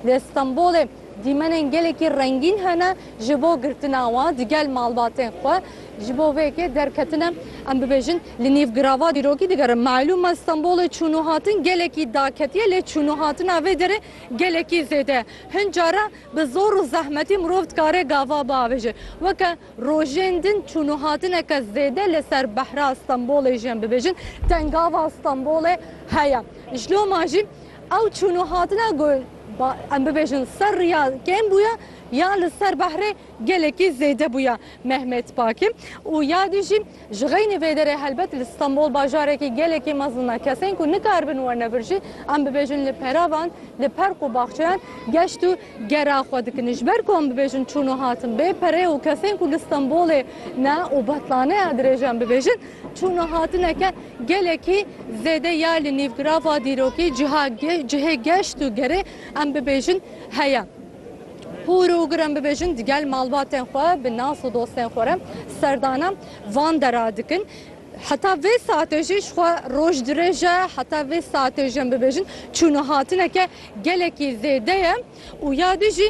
Li Stenbolê dîmenên gelekî rengîn hene ji bo girtina wan di gel malbatên xwe. Ji bo vê yekê derketine em bibêjin li nîv girava dîrokî digerin. Malûm e Stenbolê çûn û hatin gelekî daketiye lê çûn û hatina vê derê gelekî zêde ye. Hin caran bi zor û zehmetî mirov dikare gava biavêje. Weke rojên din çûn û hatineke zêde li ser behra Stenbolê jî em bibêjin tengava Stenbolê heye. Ji loma jî Ew çûn û hatine ku em bibêjin ser riya kêm bûye ya li ser behrê gelekî zêde bûye. Mehmet Paki û yadî jî ji xeynî vê derê helbet li Stenbol bajarekî gelekî mezin e. Kesên ku nikaribin werne vir jî em bibêjin li peravan, li perq û baxçeyan geşt û gera xwe dikin. Ji ber ku em bibêjin çûn û hatin bê perê û kesên ku li Stenbolê ne û betlane ya dirêj em bibêjin, Çûn û hatineke gelekî zêde ya li nîvgirava dîrokî ciha cihê geşt û gerê em bibêjin heye. Hûr û gur em bibêjin di gel malbatên xwe bi nas û dostên xwe re serdana van dera dikin. Heta vê saetê jî ji xwe roj dirêj e, heta vê saetê jî em bibêjin çûn û hatineke gelekî zêde ye û ya dî jî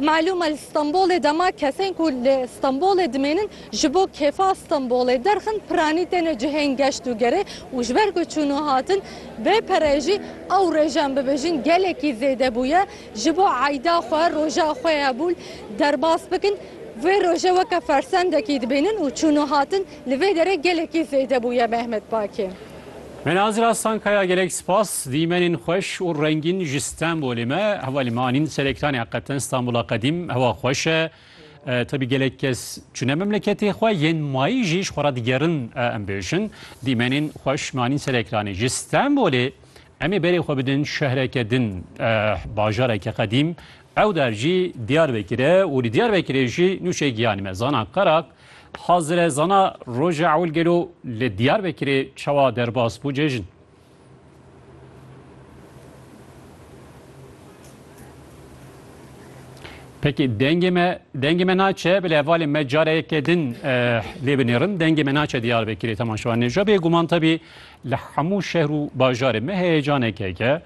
Malûm e li Stenbolê dema kesên ku li Stenbolê dimênin ji bo kêfa Stenbolê derxin piranî têne cihên geşt û gerê û ji ber ku çûn û hatin bê pereyê jî ew rêj em bibêjin gelekî zêde bûye ji bo eyda xwe roja xwe ya bûl derbas bikin vê roje weke fersendekî dibînin û çûn û hatin li vê derê gelekî zêde bûye Mehmet Baki. Me nazira Stankaya gelek spas dîmenên xweş û rengîn ji Stenbolê me hewa li me anîn serektanê heqeten Stanbola qedîm hewa xweş e tebî gelek kes çûne memleketê xwe yên mayî jî ji xwe re digerin em bêjin dîmenên xweş me anîn serektanê ji Stenbolê em ê berê xwe bidin şehreke din bajareke qedîm ew der jî Diyarbekir e û li Diyarbekirê jî nûçe giyanî me Zana Qerak Hazire zana Roja Ewil Gelo li Diyarbekirê çawa derbas bû cejn? Peki dengê me dengê me naçe bile hevalê me care yekê din lê binêrin dengê me naçe Diyarbekirê temaşewan nêja bê guman tabi li hemû şehr û bajarê me heyecaneke ke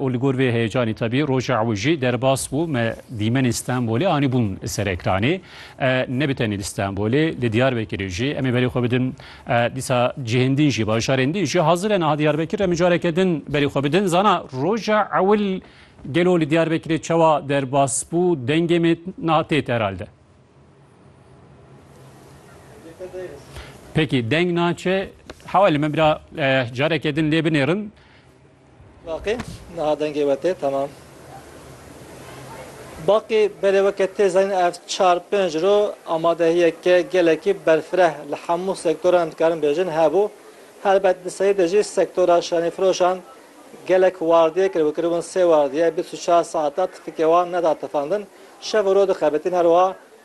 û li gor vê heyecanê tevî roja ew jî derbas bû me dîmenên Stenbolê anîbûn ser ekranê. Ne bi tenê li Stenbolê li Diyarbekirê jî em ê berê xwe bidin dîsa cihên din jî bajarên din jî hazir e niha Diyarbekir em ê careke din berê xwe bidin. Zana roja ewil gelo li Diyarbekirê çawa derbas bû dengê me niha têt herhalde. Peki deng naçe hewa li me bira careke din lê binêrin. Baqî, niha dengê we tê temam. Baqî, belê weke tê zanîn ev çar pênc roj amadehiyeke gelekî berfireh li hemû sektoran dikarin bêjin hebû. Helbet di serî de jî sektora şanîfiroşan gelek wardiyê kir û kiribûn sê wardiye bîst û çar saetan tifikê wan neda tifandin. Şev û roj dixebitîn her wiha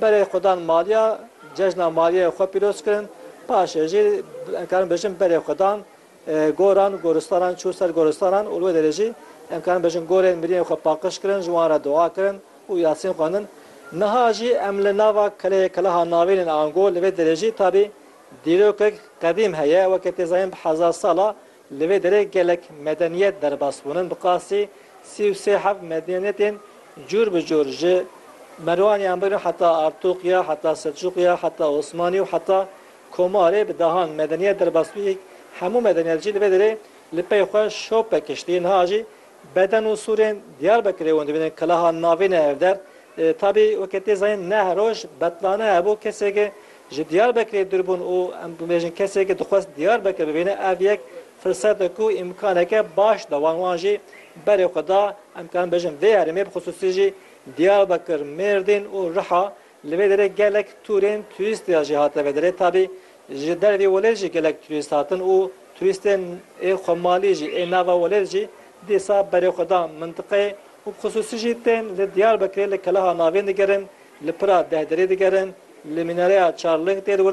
Berê xwe dan maliya, cejna maliyê xwe pîroz kirin, paşê jî em karin bijin berê xwe dan goran, goristanan çû ser goristanan û li wê derê jî em karin bijin gorên mirîyên xwe paqiş kirin, ji wan re dua kirin û yasîn xwendin. Niha jî em li nava keleyê Keleha Navîn ên Ango li vê derê jî tabî dîrokek qedîm heye weke tê zanîn bi hezar sal a Li vê derê gelek medeniyet derbas bûn in bi qasî sî û sê heft medeniyetên cûr bi cûr ji Merwaniyan bigirin heta Artûqya heta Selçûqya heta Osmanî û heta Komarê bi dehan medeniyet derbas bû hemû medeniyet jî li vê derê li pey xwe şop pekiştî niha jî Beden û sûrên Diyarbekirê wan dibînin kelaha navê ne ev der. Tabî weke tê zanîn neh roj betlane hebû kesêke ji Diyarbekirê dûr bûn û em bibêjin kesêke dixwest Diyarbekir bibîne ev yek firsetek û îmkaneke baş da wan wan jî berê xwe da em karin bêjin vê herêmê bi xisûsî jî Diyarbekir, Mêrdîn û Riha Li vê derê gelek tûrên turîst ya jî hate vederê tabî ji dervî welêt jî gelek turîst hatin û turîstên ê xwemalî jî ê nava welêt jî dîsa berê xwe dan mintiqeyê û bi xisûsî jî tên li Diyarbekirê li keleha navîn digerin li pira deh derî digerin li mînareya çar ling tê li wir